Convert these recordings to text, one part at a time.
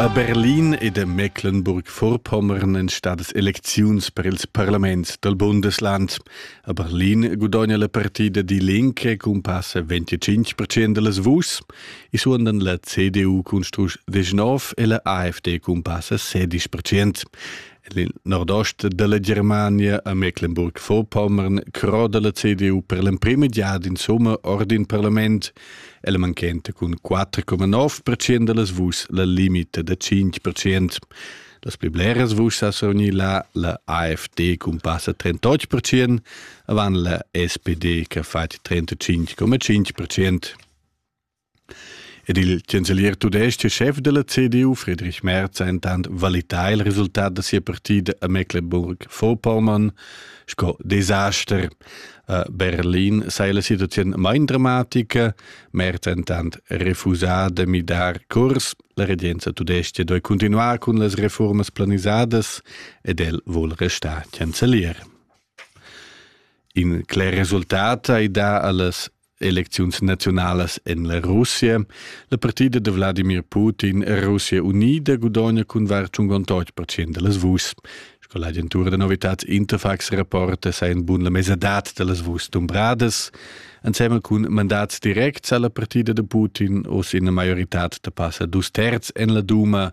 A Berlin ed a Mecklenburg-Vorpommern èn stadas elecziuns per ils parlaments dal Bundesland. A Berlin gudogna la partida Die Linke cun passa 25 percent da las vuschs e suondan la CDU cun strusch 19 e la AfD cun passa 16 percent. En il nordost dalla Germania a Mecklenburg-Vorpommern croda la CDU per l'emprima giada insomma ord in parlament. Ella manchenta cun 4,9% dallas vuschs la limita da 5%. Las pli bleras vuschs ha survgni la, la AFD cumpassa 38%, avant la SPD che ha fatg 35,5%. Ed il chancelier tudestg chef della CDU, Friedrich Merz, ha intant valità il resultat da sia partida a Mecklenburg-Vorpommern sco desaster. Berlin sei la situaziun mein dramatica, mercentant refusà de midar curs, la regenza tudesca doi continuar cun las reformas planisadas ed el vol restar chancelier. In cler resultat ei da allas elecziuns naziunalas en la Russia. La partida da Wladimir Putin e Russia unida gudogna cun var 58 procent da las vuschs. Sco l'agentura da novitads Interfax rapporta, sa in bun la mesadad da las vuschs dumbradas. Ensemen cun mandats directs alla partida da Putin o sin la maiorità da passa dus terz en la Duma,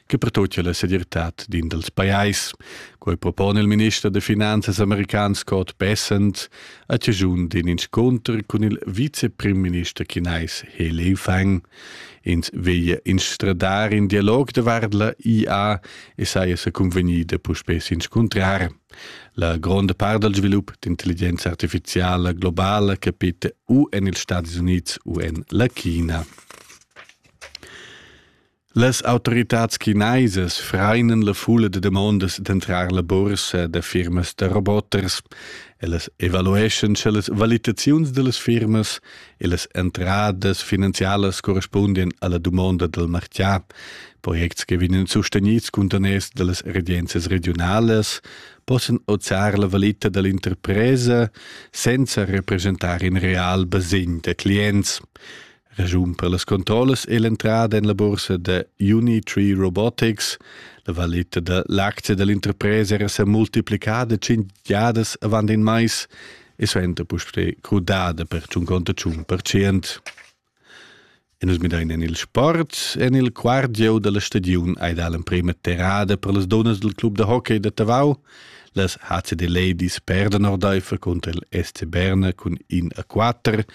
che pertutga la segirtad d'in dals pajais. Quei propone il minister da finanzas american Scott Bessent a cigiun d'in inscunter cun il viceprimminister chinais He Lifang. Ins veglia instradar in dialog davart la IA e saja sa convegnida puspè s'inscuntrar. La gronda part dal svilup d'intelligenza artificiala globala capita u en ils Stati Units u en la China. Las autoritads chinaisas freinen la fulla de demondas d'entrar la bursa da firmas da roboters, ellas evalueschan sche las valitaziuns dellas firmas e las entradas finanzialas correspundien alla dumonda del martià, projects che vegnan sustenids cuntaners dallas regenzias regionalas, possan ozar la valita dell'interpresa senza representar in real basegn da clients. Regiun per las controllas è l'entrada en la bursa da Unitree Robotics. La valita da l'actia da l'interpresa era sa multiplicada cinc giadas avant in mais e suenter puspè crudada per tschun conta tschun percent. E nus midain en il sport. En il quart gieu da la stagiun hai dà l'emprima terrada per las dunnas del club da hockey da Tavau. Las HCD Ladies perdan ordaifer cunter il SC Berna cun in a quatter,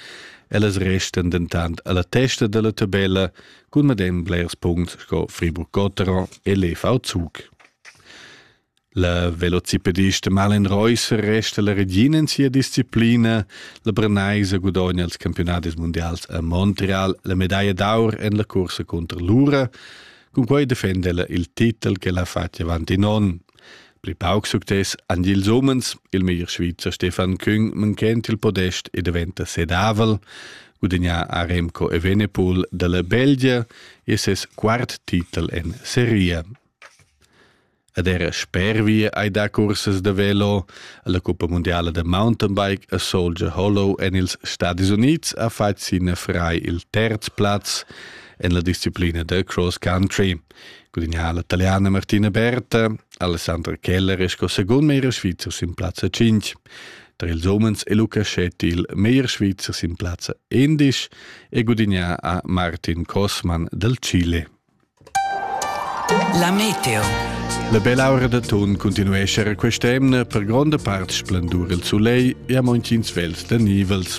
ellas restan dentant alla testa dalla tabella cun medem blers punts sco Friburg-Gotteron e l'EV Zug. La velocipedista Malin Reusser resta la regina in sia disciplina. La Brenaisa gudogna els campionadis mundials a Montreal la medaglia d'aur en la cursa contro l'Ura. Cun quei defenda ella il titel che l'ha fatg avanti non. Pli pauc success han ils umens, il meglier Svizzer Stefan Küng manchent il podest e daventa sedavel, gudagnà a Remco Evenepoel dalla Belgia e ses quart titel en seria. Ed era sper via hai dà cursas da velo alla Coppa Mondiala da Mountainbike a Soldier Hollow en ils Stadis Unids ha fatg sin frai il terz plaz en la disciplina da cross country. Gudiniala italiana Martina Berta, Alessandra Keller è sco second meglier svizzer sin plazza 5. Tra ils umens è Luca Schetti il meglier svizzer sin plazza 11 e gudignà a Martin Kosman del Chile. La meteo. La bella ora da ton continuesce a quest'emna per gronda part splendur il soleil e a montins vels da nivels.